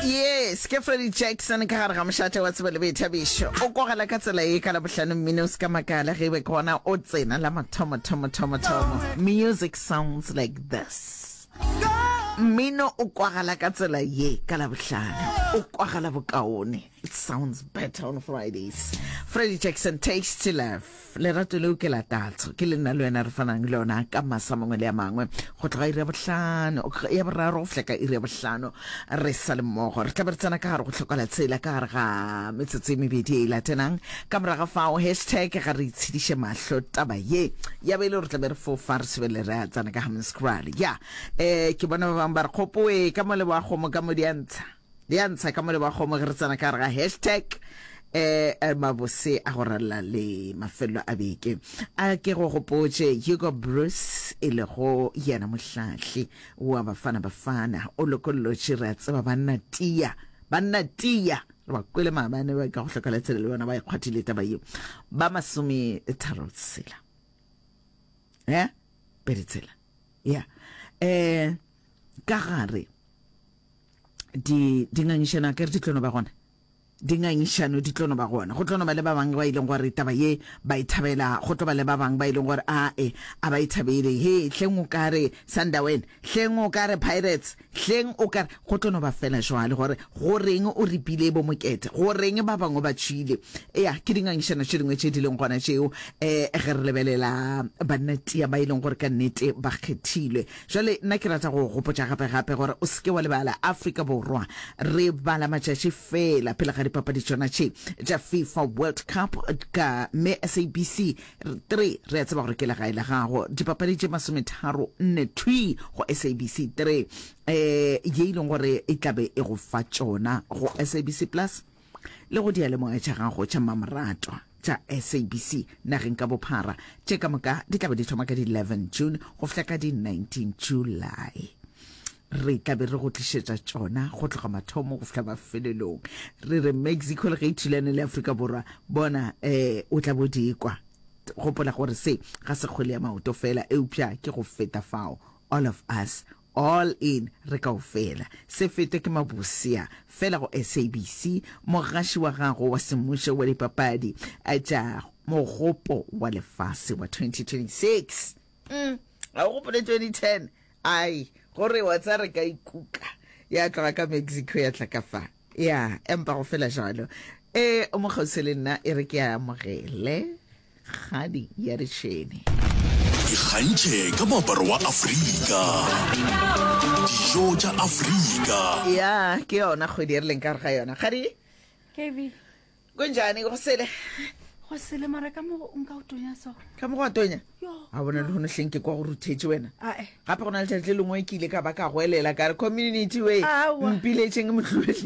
yes ke freddy jackson ka gare ga mošate wa tsebo le boithabišo o kogela ka tsela e ka labohlano mmino o se ka makala ge e be ke gona o tsena la mathomothomothomotomo music sounds like this mmino o kwagala ka tsela ye ka labohlano o kwagala bokaone It sounds better on Fridays. Freddie Jackson, Taste to Love. Lerato leo ke la tatso. Ke le nna le wena re fanang le yona ka masa mangwe le a mangwe. Go tloga iri ya bohlano, ya boraro go fihla ka iri ya bohlano re sa le mmogo. Re tlabe re tsena ka gare go tlhokola tsela ka gare ga metsotso e mebedi e e latenang. Ka moraga fao hashtag ga re itshediše mahlo taba ye. Ya bele re tlabe re fofa re sebele re a tsena ka Hammanskraal. Ya, eh, ke bona ba bangwe ba re kgopoe ka mo le wa kgomo ka mo di a ntsha. le ya ntsha ka mole ba kgomo ge re tsena ka gare ga hashtag um mabose a go ralla le mafelelo a beke a ke go gopotše hugo bruce e lego yena mohlahli wa bafana bafana o lokollotše re a tseba banna tia banna tia re ba kwele maabane ba ka go hloka letsele le bona ba ikgwathile e taba yeo ba masome tharo tsela e eh? pedi tsela ya um ka gare di di ngangišano a kere di tlono ba gona di ngangišano di tlono ba gona go tlono ba le ba bangwe ba e leng gore taba ye ba e thabela go tlo ba le ba bangwe ba e leng gore a e a ba e thabele he hleng o kare sunderwen hleng o kare pirates hleng o kare go tlono ba fela jwale gore go reng o ripile bo mokete go reng ba bangwe ba tšhile ya ke di ngangišano tše dingwe tše di leng gona tšeo um ge re lebelela banna tia ba e leng gore ka nnete ba kgethilwe Jwale, nna ke rata go go gopotša gape-gape gore o se ke wa lebala Afrika Borwa. Re bala matšatši feela pele ga dipapadi tšona tše tša FIFA World Cup ka me SABC 3. Re a tseba gore ke legae la gago. Dipapadi tše masometharo nne thwi go SABC 3, um ye e leng gore e tla be e go fa tšona go SABC Plus. le go diyalemoya tša gago tša mmamoratwa tša SABC nageng ka bophara, tše ka moka di tla be di thoma ka di 11 June go fihla ka di 19 July. Re tla be re go tlišetša tšona go tloga mathomo go fihla mafelelong. Re re Mexico le ge e thulane le Afrika Borwa, bona eh, o tla bo di kwa. Gopola gore se ga se kgwele ya maoto fela, eupša ke go feta fao. All of us All in re kaofela. Se fete ke mabusea fela go SABC, mogaši wa gago wa semmušo wa dipapadi tša mogopo wa lefase wa 2026. Ga o gopole 2010? Ai, go re wa tsa re ka ikuka ya tloga ka Mexico ya tla ka fa. Ya, empa go fela jalo. E, o mo kgauswe le nna, e re ke a amogele. kgadi ya retšhene ikgantšhe ka moaparo wa afrika dijo tša afrika ya ke yona kgwedi e re leng ka re ga yona kgadi kb kunjani go sele go sele mara ka mogo o nka o tonya so ka mogo wa tonya a bona le gone hleng ke kwa go ruthetše wena gape go na le tšatši le lengwe ke ile ka ba ka goelela ka re community way mpiletšeng motlhuele